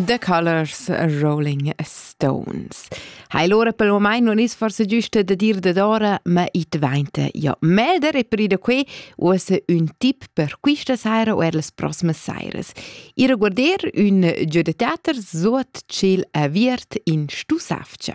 The Colors Rolling Stones. Hai l'ora per il moment non is forse giusto da dir da ora, ma i dvainta ja melder e per da qui uossa un tip per questa sera o er las prossime sairas. I reguarder un giù de teater suot ciel aviert in stu safcia.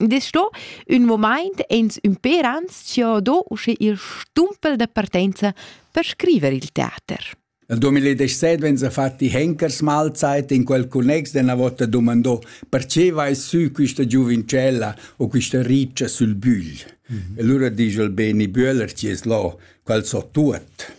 Dis sto ün momaint ins ün per ans chi ho do usche il stumpel da partenza per scriver il teater. Nel 2017 wenn sie fat die Henkersmahlzeit in quel connex della vota domandò perché vai su questa giuvincella o questa riccia sul bügl. Mm -hmm. E allora dice il Beni Böhler ci es là, qual so tuot.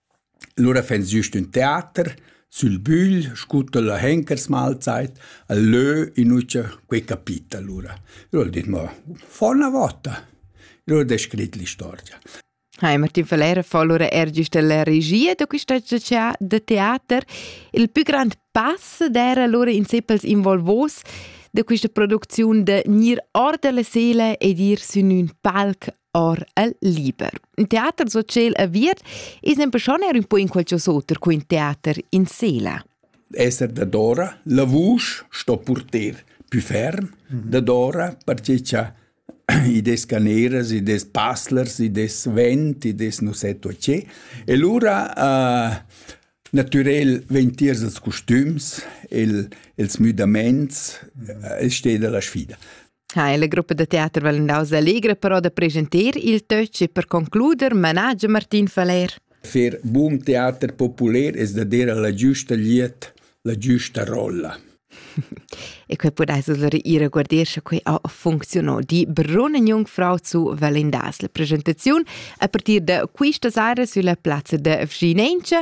Lura fans güst ün teater sül bügl scu tilla Henkersmahlzeit al lö in ucha quei capita lura. Eu ho dit: «Mo fa üna vota». Eu ho descrit l'istorgia. Hai, Martin Valera fa lura er güst la regia da quista tea da teater. Il pü grand pass d'eira lura in sé pels involvos da quista producziun da gnir or da la sela ed ir sün ün palc or el liber. In teater so tschel aviert es nempe schon er un po in qualches oter co in teater in sela. Esser dadora, la vusch sto purter più ferm, mhm. dadora perché cha i des caneras, i des passlers, i des vent, i des nu sé to che. E lura uh, Naturell vegn tiers els costüms, il, ils müdaments, uh, el steda la sfida. ha la gruppa da teater Valendau Allegra però da presentar il töch e per concluder manage Martin Faller. Fer boom teater popular es da dire la giusta liet, la giusta rolla. e quei pudais allora ir a guarder sche quei ha funziono di Brunne Jungfrau zu Valendasl presentaziun a partir da quista sera sulla plazza da Vginentia